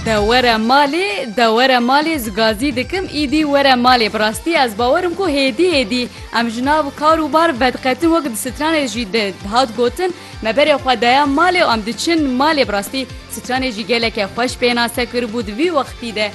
De were malê de were malê ez gazî dikim îdî were malê bi rastî ez bawer im ku hêdî hêdî em ji nav kar û bar vediqetin wek di stranê jî di dihat gotin me berê xwe daya malê û em diçin malê bi rastî stranê jî geleke xweş pênase kiribû di vî wextî de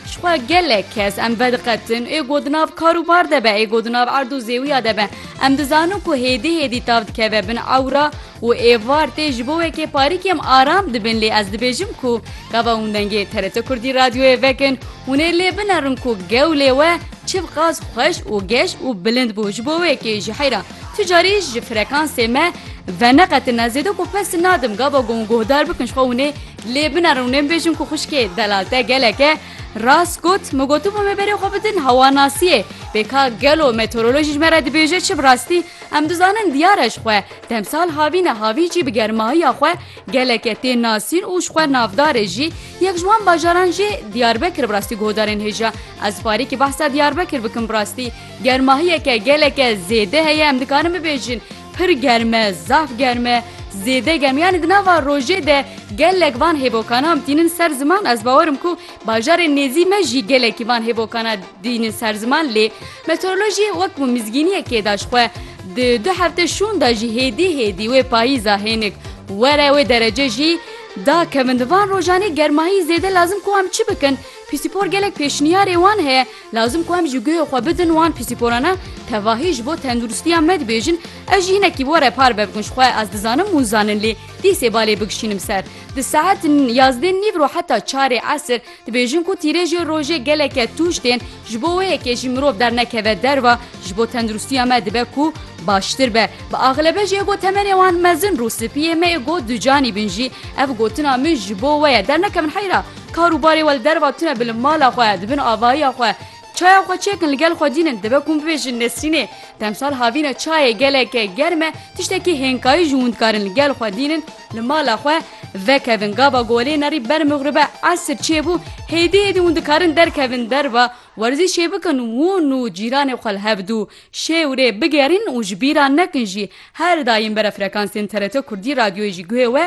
ji xwe gelek kes em vediqetin ê got di nav kar û bar de be ê got di nav erd û zêwiya de be em dizanin ku hêdî hêdî tav dikeve bin ewra Û êvar tê ji bo weke parîk em aram dibin lê ez dibêjim ku gava hûn dengê TRT Kurdî radyoyê vekin hûn ê lê binerin ku gewlê we çiv qas xweş û geş û bilind bû ji bo wekê ji heyra tu carî ji frekansê me veneqetin ez zêde ku pes nadim gava gon guhdar bikin ji xwe hûn ê lê binerin hûn ê bibêjin ku xwişkê delal te gelek e rast got min gotibû me berê xwe bidin hewanasiyê pêka gelo meteorolojî ji me re dibêje çi bi rastî Em dizanin diyar e ji xwe, demsal havîne havî jî bi germahiya xwe geleke tê nasîn û ji xwe navdar e jî, yek ji wan bajaran jî Diyarbekir bi rastî guhdarên hêja. Ez farîkî behsa Diyarbekir bikim bi rastî germahiyeke geleke zêde heye em dikarin bibêjin pir germ e, zaf germ e, zêde germ yanî di nava rojê de gelek van hêvokanan tînin ser ziman ez bawer im ku bajarê nêzî me jî gelekî van hêvokana Dînî ser ziman lê meteorolojî wek ku mizgîniyekê da ji xwe di du hefte şûn da jî hêdî hêdî wê payîza hênik were wê derece jî da kevin di van rojanê germahî zêde lazim ku em çi bikin pîsîpor gelek pêşniyarê wan heye lazim ku em ji guhê xwe bidin wan pîsîporana tevahî ji bo tenduristiya me dibêjin ez jî hinekî were par be bikin ji xwe ez dizanim hûn zanin lê dîsê balê bigişînim ser di saet yazdê nîv ro heta çarê esir Dibêjin ku tîrêjê rojê geleke tûj tên, ji bo wê yekê jî mirov dernekeve derve, ji bo tenduristiya me dibe ku baştir be. Bi axlebe jê ku temenê wan mezin rû spî yê me yê got du canî bin jî ev gotina min ji bo we ye dernekevin heyra. Kar û barê we li derva tune bi li mala xwe, di bin avahiya xwe çaya xwe çêkin li gel xwe dînin. Dibe ku min bibêjin Nesrînê demsal havîne çayê geleke germ e, tiştekî hênkayî ji hûn dikarin li gel xwe dînin. Li mala xwe vekevin gava golênerî ber mixribe esr çêbû hêdî hêdî hûn dikarin derkevin derve werzîşê bikin hûn û cîranê xwe li hev dû şê û rê bigerîn û ji bîra nekin jî her daîm bere frekansên TRT Kurdî radyoyê jî guhê we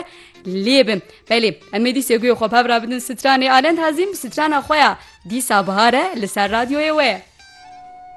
lê bin belê em ê dîsê guhê xwe bi hev re bidin stranê Alend Hezîm strana xwe ya dîsa bihar e li ser radyoyê we.